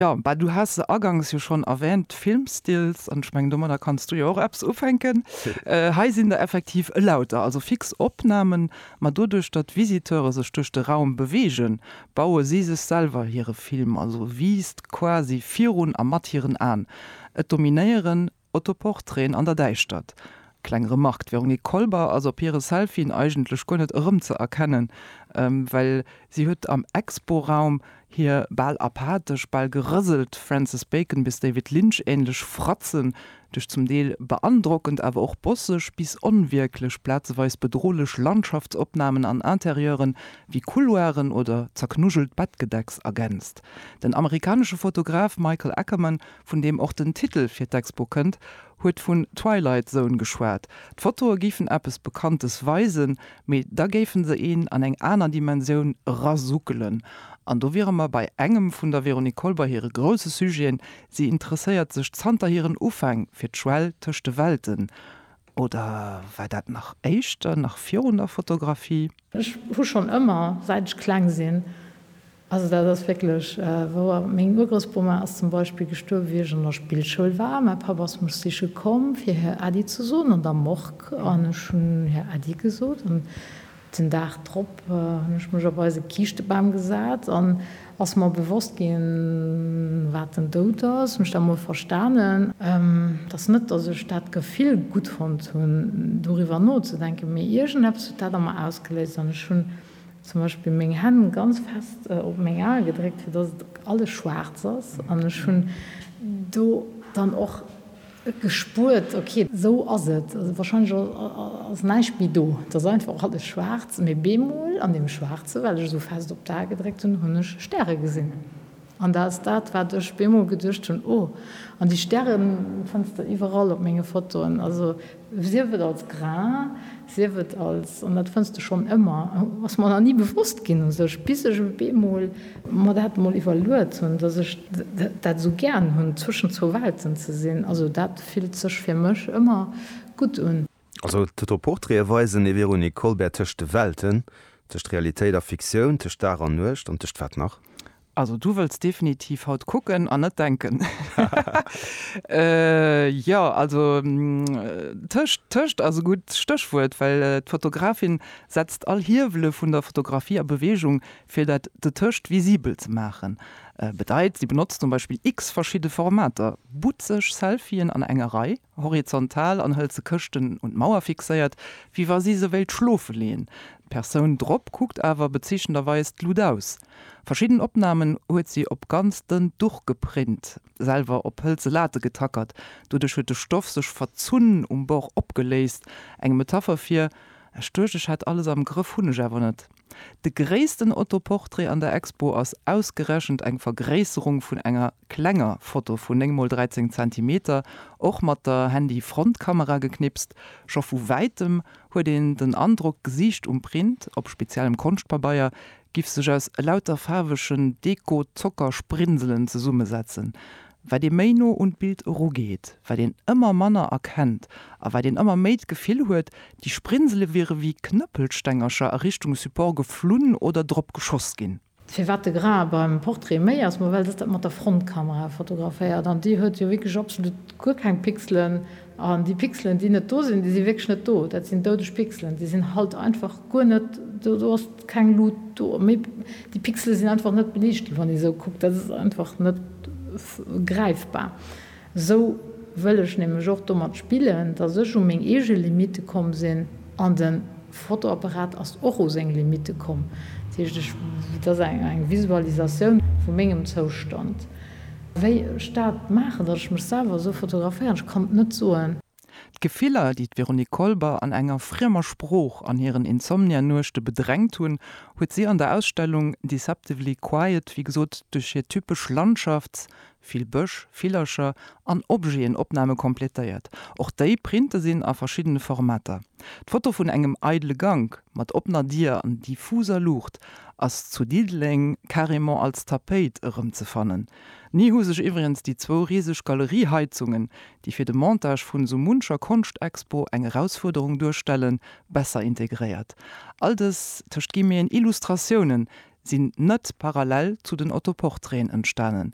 Jo, bah, du has se agangs jo schonn erwähnt, Filmstills, an ech mengen domadder kanns du jo och eppes ufänken. Hei sinn der effektiv elauter, also fix Opnahmen, ma doduerch datt Visiteure sech duerch de Raum beweegen, baue si sech selwer hire Film, also Wiisst, quasi virun a mat hiren Aen. Et dominéieren Autoportraiten an der Däischtert. Kleng Remark, d'Véronique Kolber ass op hire Selfien eigentlech guer net erëmzeerkennen, well si huet am Expo-Raum hir bal apathesch, bal gerëselt Francis Bacon bis David Lynch-änlech Fratzen duerch zum Deel beandrockend, awer och bosseg bis onwierklech, plazeweis bedrohlech Landschaftsopnamen an Interieuren wéi Couloiren oder zerknuschelt Bettgedecks ergänzt. Den amerikanesche Fotograf Michael Ackerman vun deem och den Titel fir d'Expo kënnt, huet vun Twilight Zone geschwat. D'Fotoe géifen eppes Bekanntes weisen, mee da géife se een an eng aner Dimensioun erasuckelen. An do wiere mer bei engem vun der Véronique Kolber hire grousse Sujeten, Si interesséiert sech zanter hiren Ufäng fir d'Schwell tëscht de Welten. Oder war dat nach éischter, nach virun der Fotografie? Ech hu schonn ëmmer, säit ech kleng sinn, also dat ass wierklech wouer, meng Urgroussbomma ass zum Beispill gestuerwe wéi ech an der Spillschoul war. Mäi Papp ass mech siche komm fir Här Äddi ze soen an der Morgue an ech hunn Här Äddi gesot an Den Dag drop hun ech mech op eise Kiischtebam gesaat an ass mer bewosst gin waat den Doud ass. Mech da mol verstaanen. Et ass net dass ech daat Gefill gudd fonnt hun doriwwer nozedenken, mee iergendeppes huet daat an mer ausgeléist an ech hun zum Beispill meng Hänn ganz fest op meng Ae gedréckt fir dass et alles schwaarz ass an ech hun do dann och Gespuert, ok, esou ass et. Wahrscheinlech ass näischt méi do. Et ass einfach alles schwaarz. Mee bemol an deem Schwaarze, well ech esou fest op d'A gedréckt hunn, hunn ech Stäre gesinn. An dat ass dat, wat ech bemol geduecht hunn, oh, an déi Stäre fënns de iwwerall op menge Fotoen. Also sief et als Grain, Sief et als, an dat fënns de schonn ëmmer, ass mer nach ni bewosst ginn u sech, bis ech op eemol mer dat mol iwwerluet hunn, dass ech dat esou gären hunn, zwëschen zwou Welten ze sinn. Also dat fillt sech fir mech ëmmer gutt un. Also d'Autoportraite weisen ee Véronique Colbert tëscht de Welten, tëscht Realitéit a Fiktioun, tëscht Dag an Nuecht an tëscht wat nach? Also du wëlls definitiv haut kucken an net denken. Jo, also tëscht, tëscht ass e gutt Stéchwuert, well d'Fotografin setzt all Hiewele vun der Fotografie a Beweegung, fir dat dotëscht visibel ze maachen. Bedeit, si benotzt zum Beispill x verschidde Formater, but sech Selfien an enger Rei, horizontal, an hëlt se Këschten un d'Mauer fixéiert, wéi wa si se wéilt schlofe leeën. D'Persoun drop kuckt awer bezeechnenderweis d'Lut aus. Verschidden Opnamen huet si op ganz dënnt Duch geprint, selwer op hëlze Late getackert. Doduerch huet de Stoff sech verzunn, um Bord opgeléist. Eng Metapher fir, Ech duecht, ech hätt alles am Grëff, hunn ech awer net. De gréissten Autoportrait an der Expo ass ausgerechent eng Vergréisserung vun enger Klenger Foto vu 9 mol 13 Zentimeter, och mat der Handy Frontkamera geknipst. Scho vu wäitem huet een den Androck d'Gesiicht um Print op speziellem Konschtpabeier giff sech aus elauter faarwegen Deko Zockersprinselen zesummesetzen. Wat ee méi no un d'Bild eru geet, wat een ëmmer manner erkennt a wat een ëmmer méi d'Gefill huet, déi Sprinsele wiere wéi Knëppelstengercher a Richtung Support geflunn oder drop geschoss ginn. Firwat de Grain beim Portrait méi ass, ma well dës dat mat der Frontkamera fotograféiert an déi huet jo wierklech absolut guer keng Pixelen an déi Pixelen déi net do sinn, déi si wierklech net do, dat sinn doudeg Pixelen, déi sinn halt einfach guer net do, do ass keng Lut do, méi déi Pixele sinn einfach net beliicht ginn, wann ee sou kuckt, dat ass einfach net gräifbar. Esou wëll ech nämlech och domat spillen, dass ech u meng eege Limitte komm sinn, an de Fotoapparat ass och u seng Limitte komm. Dat heescht, ech, et ass eng Visualisatioun vu mengem Zoustand. Wéi ech dat maachen, dass ech mech selwer esou fotograféieren, ech kann et net soen. D'Gefiller, déi d'Véronique Kolber an enger friemer Sprooch an hiren Insomnia-Nuechte bedrängt hunn, huet si an der Ausstellung Deceptively Quiet, wéi gesot, duerch hir typesch Landschafts-, vill Bësch, Villercher an Objeten, Opname kompletéiert. Och déi Printe sinn a verschiddene Formater. D'Foto vun engem eidele Gank mat oppener Dier an diffuser Luucht ass zu Diddeleng carrément als Tapéit erëmzefannen. Ni hu sech iwwregens déi zwou riseg Galerieheizungen, déi fir de Montage vun esou muncher Konschtexpo eng Erausfuerderung duerstellen, besser integréiert. All dës, tëscht Guillemeten, Illustratiounen sinn net parallel zu den Autoportraiten entstanen.